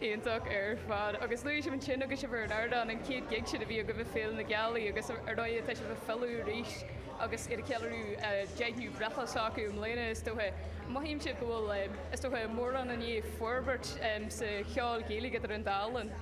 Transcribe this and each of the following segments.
iontach ar fad agus luaigh sibh ansin agus sibh ar an ardán an chéad gig sin a bhí agaibh ag Féile na Gealaí agus ar ndóigh tá sibh ag filleadh arís agus iad ag ceiliúradh a deichiú breithlá s'acu i mbliana is dócha. Mothaímse go bhfuil, is dócha, mórán i ndiaidh forbairt sa cheol Gaeilge idir an dá linn.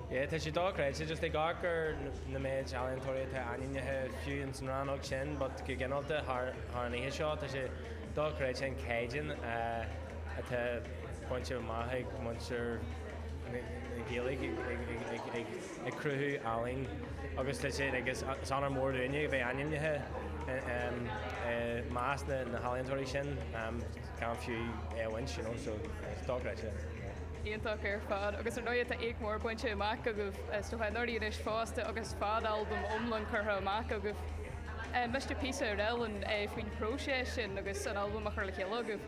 Yeah, tá sé dochreidte just ag amharc ar na méid ealaíontóirí atá ainmnithe fiú ins an rannóg sin but go gineálta thar an oíche seo tá sé dochreidte an caighdeán a atá bainte amach ag muintir na Gaeilge ag cruthú ealaíne agus is onóir mór dúinne a bheith ainmnithe i measc na n-ealaíontóirí sin gan fiú é a bhaint you know so dochreidte yeah. Iontach ar fad, agus ar ndóigh tá éacht mór bainte amach agaibh sna nuairí anois fosta agus fad albam iomlán curtha amach agaibh. Inis píosa dúinn faoin phróiseas sin agus an albam a chur le chéile agaibh?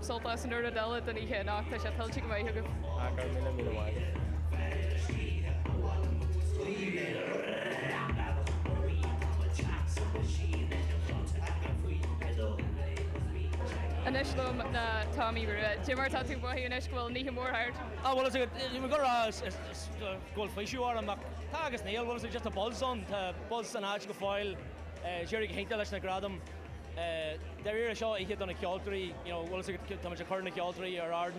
sult as an chuid eile den oíche anocht. Tá sé tuillte go maith agaibh. Go raibh míle míle mhaith. Anois liom ná Tommy Rua. Jim, cad é mar atá tú ag mothú anois go bhfuil an oíche mhór thart? Á bhuel is dócha go bhfuil faoiseamh orm ach tá agus níl bhfuil a fhios agat just a' buzz ann, tá buzz san áit go fóill. D'éirigh go hiontach leis na gradaim. Dáiríre, seo oíche do na ceoltóirí, you know, bhfuil fhios agat, táimid ag cur na gceoltóirí ar ardán.